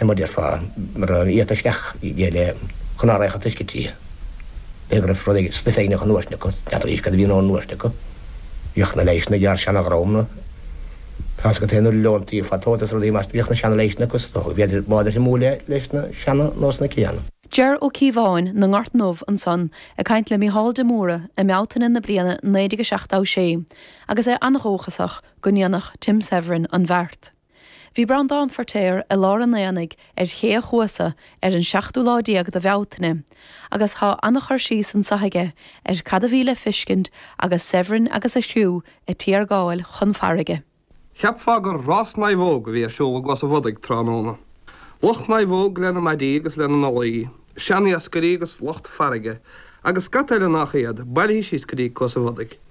An muid ar fad mar a iarrtar isteach i gcéile chun a fhreagairt toisc go dtí go raibh rud éigin sna Féinne chun nuairte acu, d'fhéadfadh a fhís cad a bhíonn ón nuairt acu. Bhíodh na leighis na gcearr seana ghrámna. Tá agat aon uile leontaí ag fáil tóit as rudaí mar bhíodh na seana leighis sin acu so bhíodar an-shuimiúil é leis na seana nó sna céanna. Deir Ó Cíobháin, na nGort Ndubh, ansan, ag caint le Mícheál de Mórdha i mBealtaine na bliana 1976, agus é an-dhóchasach go ndéanfadh Tim Severin an bheart. Bhí Breandán Feirtéar i lár an aonaigh ar Ché a' Chuasa ar an tseachtú lá déag de Bhealtaine agus tá an-chur síos anseo aige ar cad a bhí le feiscint agus Severin agus a chriú a' tiargáil chun farraige. Cheapfá gur rás naomhóg a bhí ar siúl i gCuasa Bhodaigh tráthnóna. Lucht naomhóg lena maidí agus lena n-ollaí, seaniascairí agus lucht farraige agus scata eile nach iad, bailithe síos go dtí Cuasa Bhodaigh.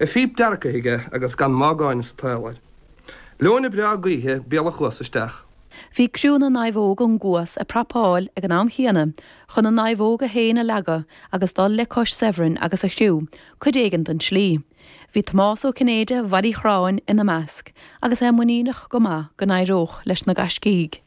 a phíp dearcaidh aige agus gan mágáin sa tsaol air. Leoithne bhreá gaoithe béal a' chuasa isteach. Bhí criú na naomhóg ón gCuas a prapáil ag an am chéanna chun a naomhóga féin a leagadh agus dul le cois Severn agus a chriú cuid éigin den tslí. Bhí Tomás Ó Cinnéide, ó Bhaile Uí Chráin, ina measc agus é muiníneach go maith go n-éireodh leis na gaiscígh.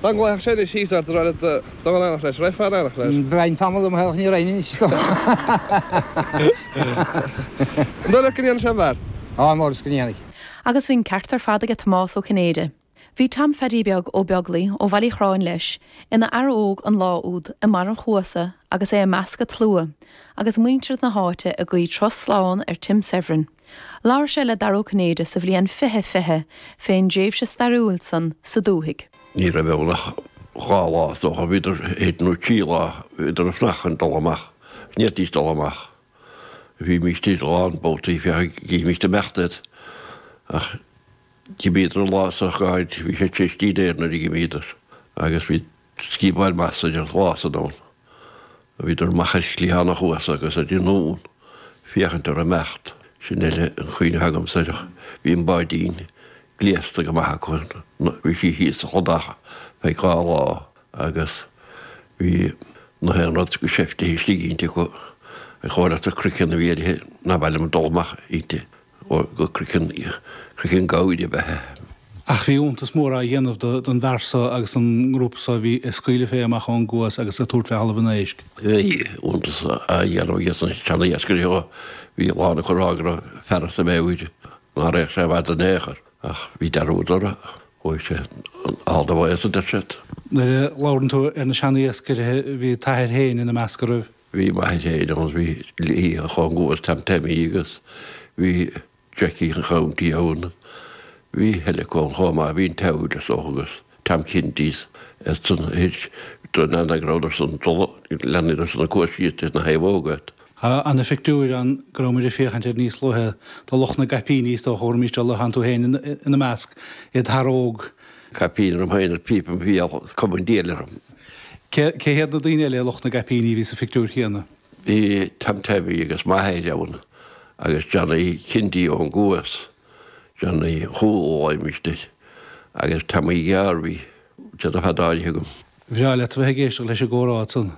Dá nglacfadh sé anois síos ort a rá le dul in éineacht leis, raghfá in éineacht leis? Dhéanfainn tamall de mo shaol ní rinn anois dó. An dóigh leat go ndéanfaidh sé an bheart? Ó is dócha go ndéanfaidh. Agus bhí an ceart ar fad aige Tomás Ó Cinnéide. Bhí Tom Pheaidí Beag Ó Beaglaoi ó Bhaile Uí Chráin leis, ina fhear óg an lá úd, i mbarr an Chuasa agus é i measc an tslua agus muintir na háite ag guí turas slán ar Tim Severin. Labhair sé le Dara Ó Cinnéide sa bhliain 2020 fén dtréimhse stairiúil san sa dúthaigh. Ní raibh ann ach dhá lá, is dócha, bhíodar istigh, dó nó trí lá, bhíodar ag fanacht chun dul amach, ní fhéadfaidís dul amach. Bhímíst ann a lán babhtaí féachaint a' gcímíst ag imeacht iad. Ach d'imíodar an lá so, bhí sé tré scrín aer nuair a dh'imíodar agus bhí. Scata beag maith slua ann a bhíodar amach ar chliathán an chuasa agus ar an nglún ag féachaint orthu ag imeacht. Sin a bhfuil de chuimhne agamsa air ach bhí an báidín gléasta go maith acu, bhí sí thíos sa chladach feadh dhá lá agus bhí gach aon rud go sáite istigh inti acu, ach ó, leathar, croiceann a bhí uirthi, ní mhaith liom dul amach inti. ó craiceann, craiceann gabhair a bhí uirthi. Ach bhí iontas mór á dhéanamh don bhfear so agus don ngrúpa so a bhí ag scaoileadh fé amach ón gCuas agus ag tabhairt fé Thalamh an Éisc. Bhí iontas á dhéanamh age sna seana-iascairí, ó bhí a lán acu ag rá go raibh an fear as a mheabhair, ná raghadh sé i bhfad in aon chor. Ach bhí dearúd orthu, chuaigh sé in ard a bháis, a deir siad. Nuair a labhrann tú ar na seana-iascairí bhí t'athair féin ina measc, an raibh? Bhí m'athair féin ann, bhí Liam an Chongo agus Tam Taimí agus bhí Jackie an Chounty ann. Bhí Heleko ann chomh maith, bhí an tSeabhaic is dócha agus Tam Kinties ar son Thuir, Droim na nEanach raibh ar son Dola, leanaí ar son na Cór Síoda is na naomhóga. Tá an pictiúr ann go raibh muid ag féachaint air níos luaithe de lucht na gcaipíní is dócha, thuairmigh sé luaith ann, tú féin ina measc, i d'fhear óg. Caipín orm féin is píopa im béal, is cuma an diabhail orm. Cé hiad na daoine eile i lucht na gcaipíní a bhí sa phictiúir chéanna? Bhí Tam Taimí agus m'athair ann agus Johnny Kinty ón gCuas, Johnny Chóil Ó Loingsigh agus Tommy Dhiarmaí, táid ar fad bailithe agam. Bhreá leat a bheith ag éisteacht leis an gcomhrá ansan.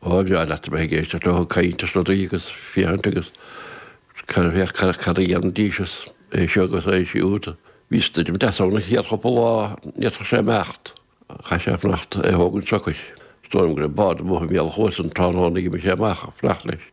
Ó, bhreá leat a bheith ag éisteacht leo ag caint ar rudaí agus féachaint agus cad a bheadh, cad a dhéanfaidís is é seo agus é siúd. Bhí stoirm deas ann an chéad chúpla lá, n'fhéadfadh sé imeacht. Chaith sé fanacht is é a thógaint socair. Is dóigh liom go raibh bád amuigh i mbéal an Chuasa an tráthnóna a d'imigh sé amach ag fanacht leis.